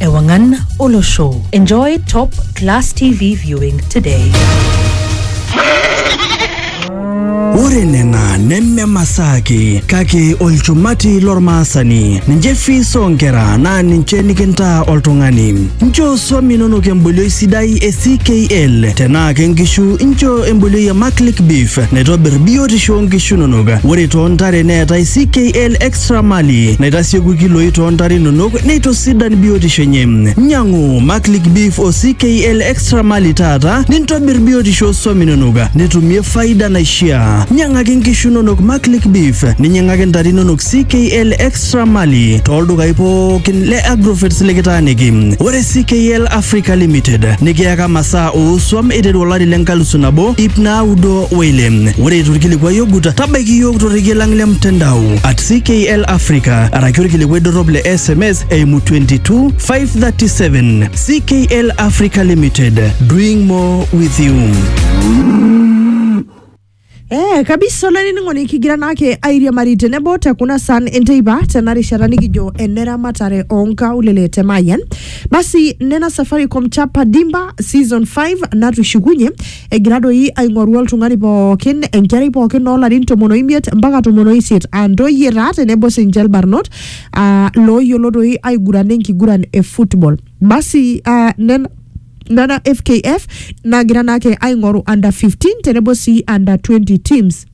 Ewangan Olo Show. Enjoy top class TV viewing today. ore nena neme masaa ake kake olchumati lormaasani ninche fees oonkera naa ninche nikintaa oltung'ani nchoo swam inonok embolioi sidai e ckl tenaa ke nkishu nchoo embolioi e maclick beef naitobir biotisho oonkishu inonok ore toontare neetai ckl Tramali naitasieku ilkiloi too ntare inonok neitosidan biotisho enye. Nyang'u Maclick Beef o CKL Extra Mali taata nintobir biotisho oo swam inonok nitumie faida naishiaa. Nyang'aki nkishu inonok Maclick Beef ninyang'aki ntare inonok CKL Extra Mali too ldukai pookin le Agrovets likitaaniki. Ore CKL Africa Limited nikiyaka masaa oo swam eiteru olari le nkalusu nabo ip naudo Wele, ore eitu ilkilikuai ogut, tabaiki iyiook torrekie lang le mtandao at CKL Africa araki olkilikuai dorrop le SMS eimu 22 537. CKL Africa Limited, doing more with you. Eh, kabisa olainining'oni kigira naake airiamari tenebo te kuna san enteipa tena rishata nikijo eneramatare oonkaulele te Mayian. Basi nena Safaricom Chapa Dimba season 5 natushukunye egira doi aing'oru oltung'ani pookin enkerai pookin oolarin tomon oimiet mpaka tomon oisiet aa ntoyie taa tenebo sinche ilbarnot aa looyiolo doi aigurana enkiguran e football basi aa nena nena fkf nagira naake aing'oru under 15 tenebo sii under 20 teams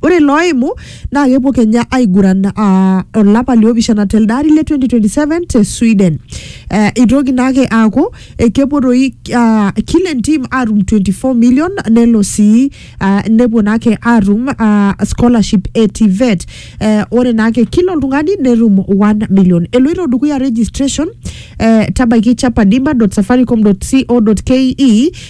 Ore ilooimu naa kepuo Kenya aiguran aa olapa liopishana telde ari le 2027 te Sweden. Eh, itoki naake aaku eh, kepuo doi ah, kila entim atum 24 million nelo sii ah, nepuo naake atum ah, scholarship e TVET. Eh, ore naake kila oltung'ani netum 1 million. Eloito dukuya registration eh, tabaiki chapadima.safaricom.co.ke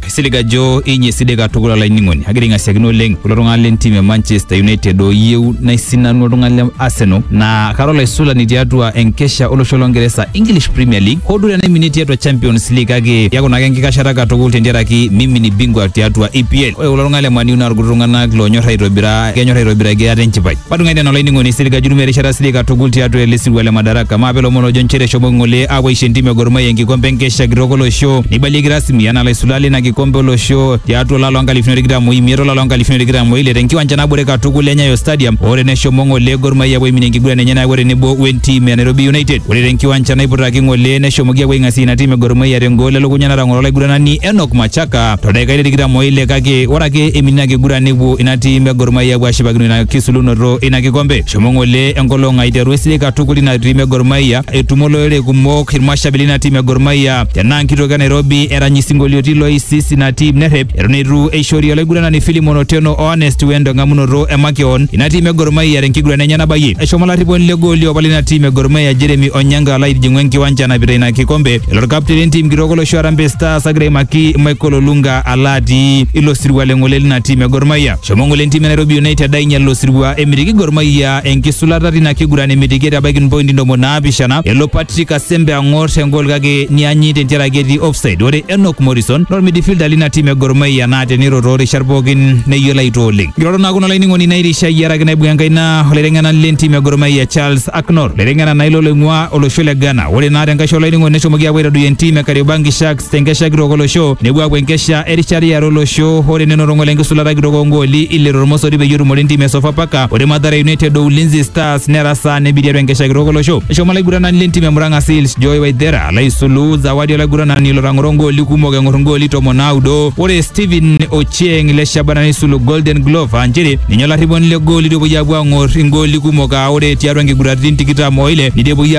Kaisilig ajo inyi esidai katukul olainining'oni. Agira aing'asiakino oleng kulo tung'anak lentim e Manchester United ooyieu naisinanu oltung'ani le Arsenal naa kara olaisulani tiatua enkesha olosho longeresa English Premier League hoo duo tenaiminie tiatua Champions League kake keaku naake enkikashata katukul tentiaraki mimini bingwa tiatua EPL. Ore kulo tung'anak le Man U naa irkuti tung'anak loonyor aitobira kenyor aitobiraki ate enchipai. Patung'ai nena olainining'oni Sirika Jurumia erishata sidik katukul tiatua ele sirua le Madaraka. Maape lomon ojo nchere eshomo ng'ole aapuo aisho entim e Gor Mahia enkikompe enkesha kitok olosho neibalieki rasmi anaa laisulak leina kikompe olosho tiatua olari loo nkalifuni are tikitam o imiet olari loo nkalifuni are tikitam o ile tenkiwanja nabore katukul e Nyayo Stadium o ore neshomo ng'ole Gor Mahia apuo aiminie enkiguran enye nayawua tenebo wentim e Nairobi United. Ore tenkiwanja naiputaki ng'ole neshomoki apuo aing'asie ina tim e Gor Mahia tengol elukunya natang'oro olaiguranani Enock Machaka toldakikai le tikitam o ile kake ore ake eiminie ina kiguran nepuo ina tim e Gor Mahia epuo ashipakino ina kisulunoto ina kikombe. Shomo ng'ole enkolong aiteru esidai katukul ina tim e Gor Mahia. Etumo olorere kumok irmashabi lina tim e Gor Mahia. Tenaa nkitoki e Nairobi erany isinkolioitin loisis ina tim nerrep eton eitu eishori olaiguranani Philimon Otieno o Honest Wendo eng'amunoto e makeon ina tim e Gor Mahia tenkiguran enye nabayie. Eshomo olarriponi le gooli opa lina tim e Gor Mahia Jeremy Onyango alo aitijing'u enkiwanja enapita ina kikombe. Elo orkapteni lentim kitok olosho Harambee Stars agira aimaki Michael Olunga alo atii ilo sirua le ng'ole lina tim e Gor Mahia. Shomo ng'ole entim e Nairobi United ainyal ilo sirua emitiki Gor Mahia enkisulata tina kiguran emitiki etabaiki mpointi ntomoni naapishana. Elo Patrick Asembe ang'or engol kake nianyi tentiaraki etii offside. Ore Enock Morrison naa ormidifilda lina tim e Gor Mahia naa teniro too rishat pookin neyiolo aitoo oleng. Nkirorot naa kuna olainining'oni nairishayie araki naibung enkaina olaiteng'enani le ntim e Gor Mahia Charles Aknor. Laiteng'ena naa ilo loing'ua olosho le Ghana. Ore naa tenkaisho olainining'oni neshomoki aapuo aitadoyio entim e Kariobangi Sharks tenkesha kitok olosho nepuo aapuo enkesha erishata iare olosho ore nenoto lenkisulata kitok oongooli ile tormosori peyie etumore entim e Sofapaka ore Mathare United o Ulinzi Stars nera saa nebi tiatua enkesha kitok olosho eshomo olaiguranani lentim e Murang'a Seals Joy Waithera alo aisulu zawadi olaiguranani lotang'oro ngooli kumok eng'or ngooli tomon naudo ore Stephen Ochieng le Shabana neisulu Golden Glove aa nchere ninye olarriponi le gooli tepuoi aapuo aang'or ingooli kumok aa ore tiatua nkiguraritin tikitam oile neidipuoyie